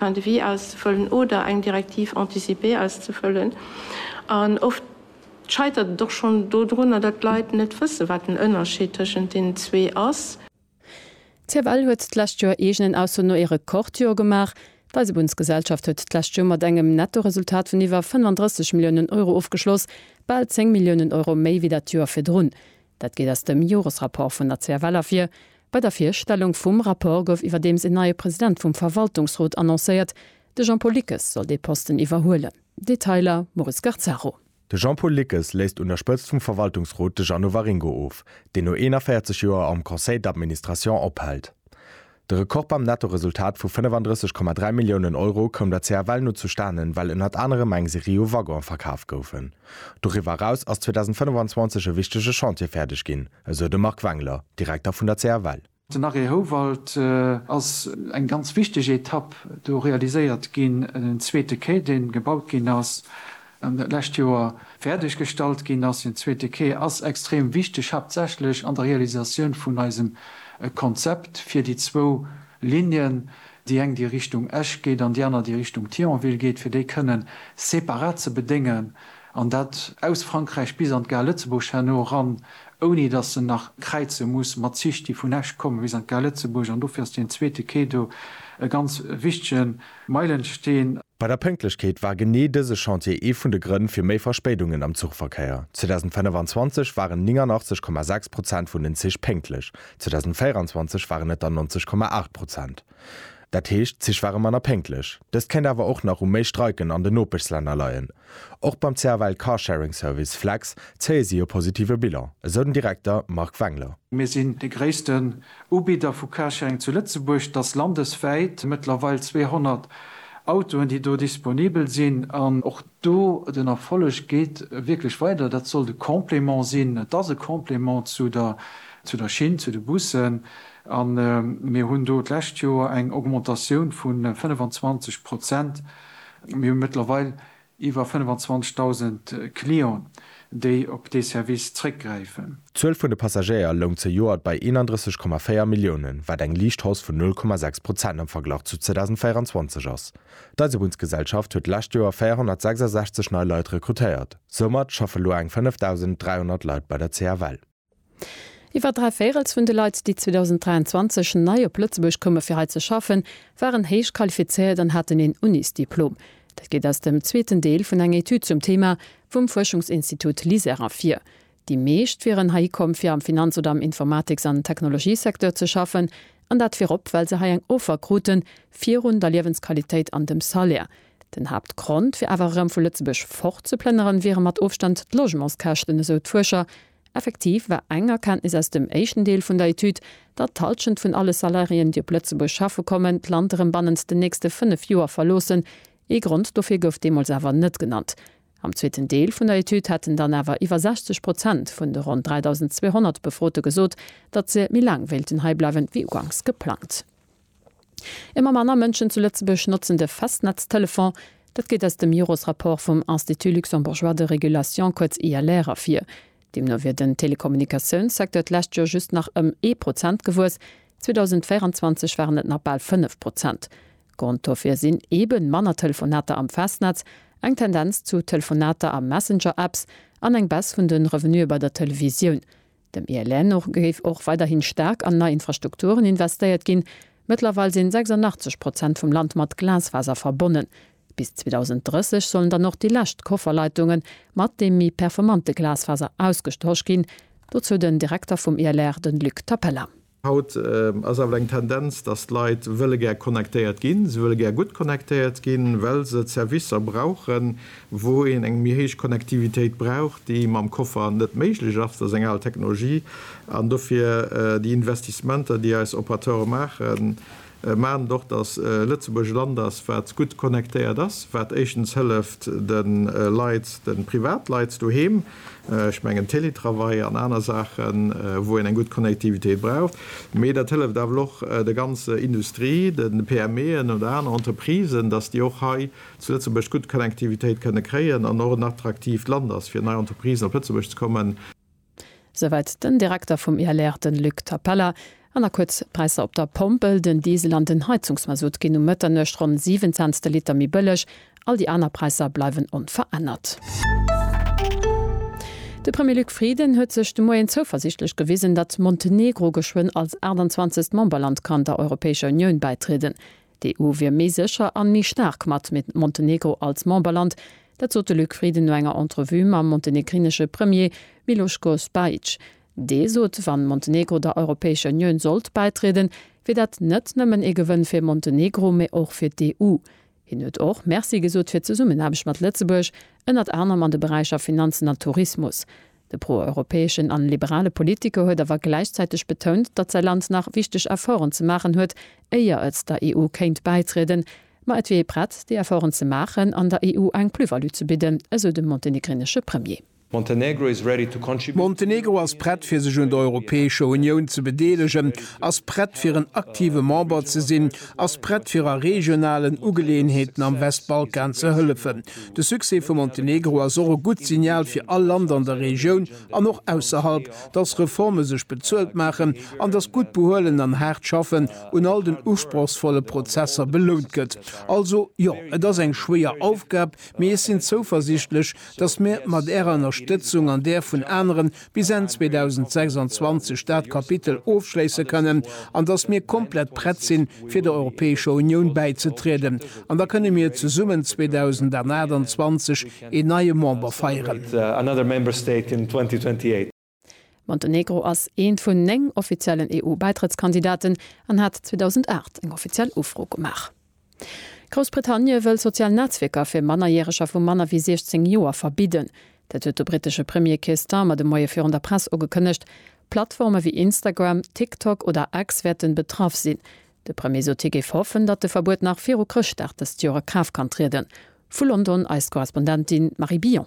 Fin de vie aus ze fëllen oder eng Directive anticipée aus ze fëllen. An oft scheitert et och schonn dodrunner, datt d'Leit net wëssen, wat den Ënnerscheed tëschent deenen zwee ass. D'CFL huet d'lescht Joer eegenen Ausso no ee Rekordjoer gemaach. D'Eisebunnsgesellschaft huet d'lescht Joer mat engem Nettoresultat vun iwwer 35 Milliounen Euro ofgeschloss, bal 10 Milliounen Euro méi wéi dat Joer virdrun. Dat geet aus dem Joresrapport vun der CFL ervir. Bei der Virstellung vum Rapport gouf iwwerdeems een neie President vum Verwaltungsrot annoncéiert. De Jean-Paul Lickes soll dee Posten iwwerhuelen. Detailer, Maurice Garzaro. De Jean-Paul Lickes léisst un der Spëtzt vum Verwaltungsrot de Jeannot Waringo of, deen no 41 Joer am Conseil d'administration ophält. De Rekord beim Nettoresultat vu 35,3 Milliounen Euro koum der CFL no zustanen, well ënnert anerem eng Serie u Waggonen verkaf goufen. Doriwwer eraus ass 2025 e wichtege Chantier fäerdeg ginn. esou de Marc Wengler, Direkter vun der CFL. Den Arrêt Houwald ass eng ganz wichteg Etapp. Do realiséiert ginn en zweete Quai, dee gebaut ginn ass an d'lescht Joer fäerdeg gestallt ginn ass. Deen zweete Quai ass extrem wichteg, haaptsächlech an der Realisatioun vun eisem Konzept fir déi zwou Linnen, déi eng déi Richtung Esch geet an déi aner déi Richtung Thionville geet, fir déi kënnen separat ze bedéngen. An dat aus Frankräich bis an d'Gare Lëtzebuerg herno eran, ouni datt se nach kräize muss mat Zich, déi vun Esch kommen bis an d'Gare Lëtzebuerg. An dofir ass deen zweete Quai do e ganz wichtige Meilensteen. Bei der Pënktlechkeet war genee dëse Chantier ee vun de Grënn fir méi Verspéidungen am Zuchverkéier. 2025 waren 89,6 Prozent vun den Zich pénktlech, 2024 waren et der 90,8 Prozent. Dat heescht, d'Zich ware manner pénktlech. Dëst kéint awer och nach u méi Streiken an den Nopeschslänner leien. Och beim CFL Carsharing Service Flex zéie si e positive Bilan, esou den Direkter Marc Wengler. Mir sinn de gréissten Ubidder vu Carsharing zu Lëtzebuerg. Dass landeswäit mëttlerweil 200 Autoen, déi do disponibel sinn an och Do, den Erfolleg geet wierklech weider. Dat sollt e Complément sinn. Et ass e Complément zu der, zu der Schinn, zu de Bussen. A mir hunn do d'lescht Joer eng Augmentatioun vu 25 Prozent. Mir hu mëttlerweil iwwer 25.000 Clienten, déi op dee Service zréckgräifen. D'Zuel vun de Passagéier loung zejoert bei 31,4 Milliounen, wat eng liicht Hausse vun 0,6 Prozent am Verglach zu 2024 ass. D'Eisebunnsgesellschaft huet d'lescht Joer 466 nei Leit rekrutéiert. Soumat schaffe lo eng 5.300 Leit bei der CFL. Iwwer dräi Véirels vun de Leit, déi 2023 nei op Lëtzebuerg koume fir hei ze schaffen, waren héich qualifizéiert an haten een Unisdiplom. Dat geet aus dem zweeten Deel vun enger Etüd zum Thema vum Fuerschungsinstitut LISER ervir. Déi meescht wieren heihi komm, fir am Finanz oder am Informatiks an Technologiesecteur ze schaffen, an dat virop, well se hei eng Offer kruten, virun der Liewensqualitéit an dem Salaire. Den Haaptgrond, fir awer erëm vu Lëtzebuerg fortzeplënneren, wiere mat Ofstand d'Logementskäschten, esou d'Fuerscher. Effektiv war eng Erkenntnis aus dem éischten Deel vun der Etüd, datt d'Hallschent vun alle Salariéen, déi op Lëtzebuerg schaffe kommen, d'Land erëm bannent den nächste fënnef Joer verloossen. Ee Grond dofir gouf deemools awer net genannt. Am zweeten Deel vun der Etüd hätten dann awer iwwer 60 Prozent vun de ronn 3.200 Befrote gesot, datt se méi laang wéilten hei bleiwen, wéi uganks geplangt. Ëmmer manner Mënschen zu Lëtzebuerg notzen de Festnetztelefon. Dat geet aus dem Jores-Rapport vum Institut luxembourgeois de régulation, kuerz ILR, ervir. Deemno wier den Telekommunikatiounssecteur d'lescht Joer just nach ëm ee Prozent gewuess, 2024 waren et nach bal fënnef Prozent. Grond dofir sinn eben manner Telefonater am Festnetz, eng Tendenz zu Telefonater a Messenger-Apps an eng Baisse vun den Revenuë bei der Televisioun. Dem ILR no géif och weiderhin staark an nei Infrastrukturen investéiert ginn. Mëttlerweil sinn 86 Prozent vum Land mat Glasfaser verbonnen. Bis 2030 sollen dann och déi lescht Kofferleitungen mat deem méi performante Glasfaser ausgetosch ginn. Dozou den Direkter vum ILR, den Luc Tapella. Haut ass awer eng Tendenz, dass d'Leit wëlle gär connectéiert ginn. Se wëlle gär gutt connectéiert ginn, well se d'Servicer brauchen, wou een eng méi héich Connectivitéit brauch, déi mam Koffer net méiglech ass, dat ass eng al Technologie. An dofir déi Investissementer, déi eis Operateure maachen, Mä net och, datt Lëtzebuerg e Land ass, wat gutt connectéiert ass, wat éischtens hëlleft de Leit, de Privatleit doheem, ech mengen Télétravail an aner Saachen, wou een eng gutt Connectivitéit braucht, mä dat hëlleft awer och der ganzer Industrie, de PMEen oder aner Entreprisen, datt déi och hei zu Lëtzebuerg gutt Connectivitéit kënne kréien an och en attraktiivt Land ass, fir nei Entreprisen op Lëtzebuerg ze kommen. Souwäit den Direkter vum ILR, den Luc Tapella. An da kuerz d'Präisser op der Pompel, Den Diesel an den Heizungsmasutt ginn um Mëtternuecht ronn 7 Cents de Liter méi bëlleg. All déi aner Präisser bleiwen onverännert. De Premier Luc Frieden huet sech de Moien zouversiichtlech gewisen, datt Montenegro geschwënn als 28. Memberland kann der Europäescher Unioun bäitrieden. D'EU wier méi sécher an méi staark mat Montenegro als Memberland. Dat sot de Luc Frieden no enger Entrevue mam montenegrinesche Premier Miloš Kosbajić. Dee sot, wann Montenegro der Europäescher Unioun sollt bäitrieden, wier dat net nëmmen ee Gewënn fir Montenegro, mee och fir d'EU. Hien huet och Merci gesot fir d'Zesummenaarbecht mat Lëtzebuerg, ënnert anerem an de Beräicher Finanzen a Tourismus. De pro-europäeschen an liberale Politiker huet awer gläichzäiteg betount, datt säi Land nach wichteg Efforten ze maachen huet, éier et der EU kéint bäitrieden, ma et wier ee prett, déi Efforten ze maachen an der EU eng Plus-value ze bidden, esou de montenegrinesche Premier. Montenegro is ready to contribute. Montenegro ass prett fir sech un der Europäescher Unioun ze bedeelegen, ass prett fir en aktive Member ze sinn, ass prett fir a regionalen Ugeleeënheeten am Westbalkan ze hëllefen, De Succès vu Montenegro ass och e gutt Signal fir all Land an der Regioun an och ausserhalb, dass Reforme sech bezuelt maachen an dass gutt Behuelen an haart Schaffen un all den usprochsvolle Prozesser belount gëtt. Also, jo, et ass eng schwéier Aufgab, mee ech sinn zouversichtlech, dass mir mat Ärer Ënnerstëtzung an där vun aneren bis Enn 2026 dat Kapitel ofschléisse kënnen an datt mir komplett prett sinn, fir der Europäescher Unioun bäizetrieden. An da kënne mir zesummen 2028 een neie Member feieren. Montenegro ass eent vun néng offiziellen EU-Bäitrëttskandidaten an hat 2008 eng offiziell Ufro gemaach. Groussbritannie wëll sozial Netzwierker fir Mannerjäreger vu manner wéi 16 Joer verbidden. Dat huet de brittesche Premier Keir Starmer de Moie virun der Press ugekënnegt. Plattforme wéi Instagram, TikTok oder X wäerten betraff sinn. De Premier sot hie géif hoffen, datt de Verbuet nach viru Chrëschtdag dëst Joer a Kraaft kann trieden. Vu London eis Korrespondentin Marie Billon.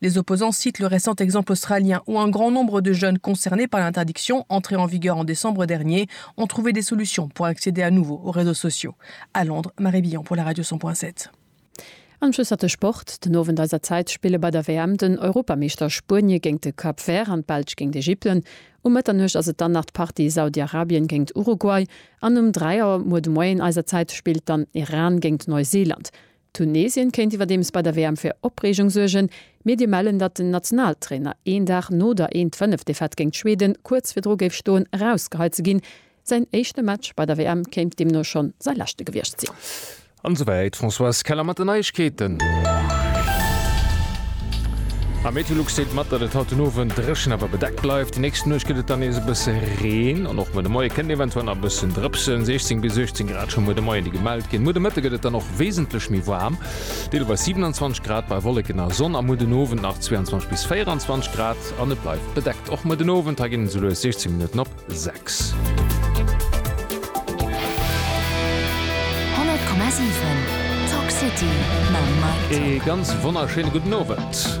Les opposants citent le récent exemple australien où un grand nombre de jeunes concernés par l'interdiction, entrée en vigueur en décembre dernier, ont trouvé des solutions pour accéder à nouveau aux réseaux sociaux. À Londres, Marie Billon pour la Radio 100.7. An Schluss hat de Sport. Den Owend eiser Zäit spille bei der WM den Europameeschter Spuenie géint de Cap Vert an d'Belsch géint Ägypten. Um Mëtternuecht ass et dann nach d'Partie Saudi-Arabien géint Uruguay an um 3 Auer muer de Moien eiser Zäit spillt dann Iran géint Neuseeland. Tunesien kéint iwwerdeems bei der WM fir Opreegung suergen. Mir dir mellen, datt den Nationaltrainer een Dag no der 'een d'fënnef' Defaite géint Schweden kuerz virdru géif stoen erausgeheit ze ginn. Säin éischte Match bei der WM kéint deemno schonn säi leschte gewiescht sinn. An souwäit d'Françoise Keller mat den Neiegkeeten. Am Meteolux seet mat, datt et haut den Owend dréchen awer bedeckt bleift. Déi nächst Nuecht gëtt et dann nees e bësse Reen an och muer de Moie kënnt eventuell nach e bëssen drëpsen. 16 bis 18 Grad scho muer de Moien, déi gemellt ginn. Muer de Mëtte gëtt et dann och. wesentlech méi waarm, deelweis 27 Grad bei Wolleken a Sonn, a muer den Owend nach 22 bis 24 Grad an et bleift bedeckt. Och muer den Owend, hei ginn et esou lues 16 Minutten op 6. E ganz wonnerschéine gudden Owend.